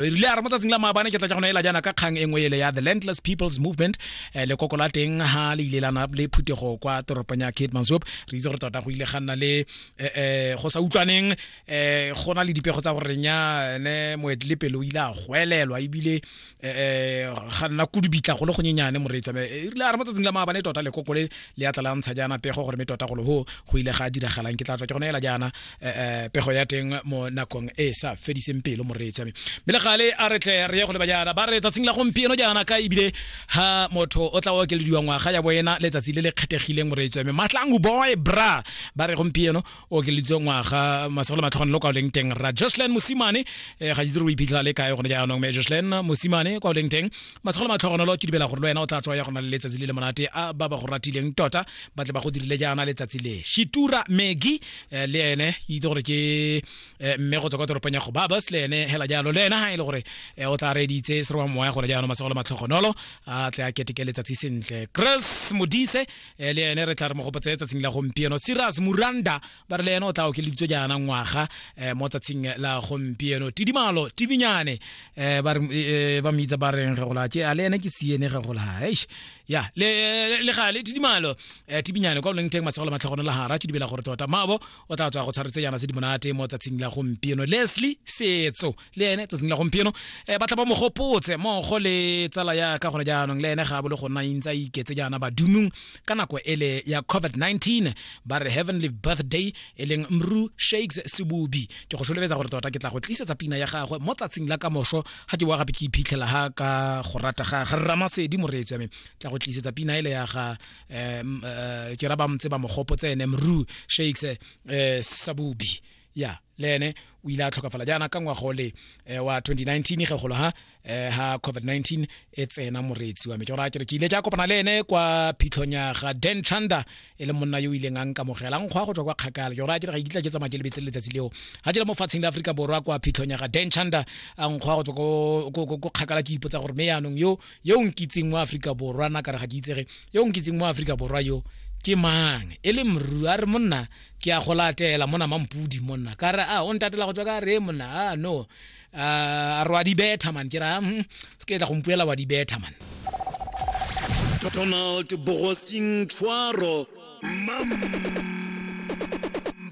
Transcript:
re rile a re mo tsatsing la maabane ke tla ka go neela jaana ka kgang e nngwe ele ya the landless people's movement um lekoko la teng ga le ile lana le phuthego kwa toropong ya kate mansop re itse gore tota go ile ga nna le um go sa utlwaneng um go na le dipego tsa goreng ya ne moetle pele o ile a goelelwa ebile um ga nna kudubitla go le gonyenyane moreetswa e rile a re mo tsatsing la maabane tota lekoko le le ya tla la ntsha jaana pego gore me tota golo go go ile ga diragalang ke tla tswa ke go neela jaana eh, pego ya teng mo nakong e sa fediseng pelo moreetsi wa me mme le gale a re tle re ye go leba jaana ba re tsatsing la gompieno jaana ka ebile ha motho o tla okelediwa ngwaga ya boena letsatsi le le kgethegileng moreetsi wa me matlangu boy bra ba re gompieno o okeleditswe ngwaga masego le matlhogone lo kwa o leng teng ra jocelyn mosimane eh, ga itse re o iphitlhela le kae gone jaanong mme jocelyn mosimane kwa o leng teng masego le matlhogone lo ke dumela gore le wena o tla tswa ya go na le letsatsi le le monate a ba ba go ratileng tota ba tle ba go dirile jaana letsatsi le shitura megi eh, le ene ke itse gore ke eh, mme go tswa kwa toropong ya go babas le ene hela jalo le ena ha e le gore eh, o tla reditse seroba moya gone jaanong masego le matlhogonolo a tle a keteke letsatsi sentle chris modise eh, le ene re tla re mo gopotse tsatsing la gompieno siras muranda ba re le ene o tla okeleditswe jaana ngwaga eh, mo tsatsing la gompieno tidimalo tibinyane eh, ba re- eh, ba mmitsa ba reng ge gola ke a le ene ke siene ge gola eish ya le le- le gale tidimalo eh, tibinyane kwa boleng teng matshego le matlhogono la gara ke dumela gore tota mabo o tla tswa go tshwaretse yana tse di monate mo tsatsing la gompieno leslie setso le ene tsatsing la gompieno eh, ba tla ba mogopotse mogo le tsala ya ka gone jaanong le ene ga a bole go nna intsa iketse jaana badumong ka nako ele ya covid-19 ba re heavenly birthday e leng mru shakes sebubi ke go solobetsa gore tota ke tla go tlisetsa pina ya gagwe mo tsatsing la kamoso ga ke boa gape ke iphitlhela ga ka go rata ga ga ramasedi moreetsi wa me tla go tlisetsa pina ele ya ga um ke ra ba mtse ba mogopo tsene mru shakes um sabubi ya le ene o ile a tlhokafala jaana ka ngwago le eh, wa 2019 ge golo ha eh, ha covid-19 e tsena moreetsi wa me ke gore a kere ke ile ke a kopana le ene kwa phitlhong ya ga dan chanda e le monna yo o ileng a nkamogela nkgwa go tswa kwa kgakala ke gore a kere ga e kitla ke tsamaya ke lebetse letsatsi leo ga jela mo fatsheng la aforika borwa kwa phitlhong ya ga dan chanda a nkgwa go tswa ko kgakala ke ipotsa gore me yaanong yo yo o nkitseng mo aforika borwa na kare ga ke itsege yo o nkitseng mo aforika borwa yo ke mang e le mru a re monna ke a go latela mona mampudi monna ka re a o ntatela go tswa ka re monna a no a re wa di betha man ke ra mm, se ke tla go mpuela wa di betha man donald bogosing tshwaro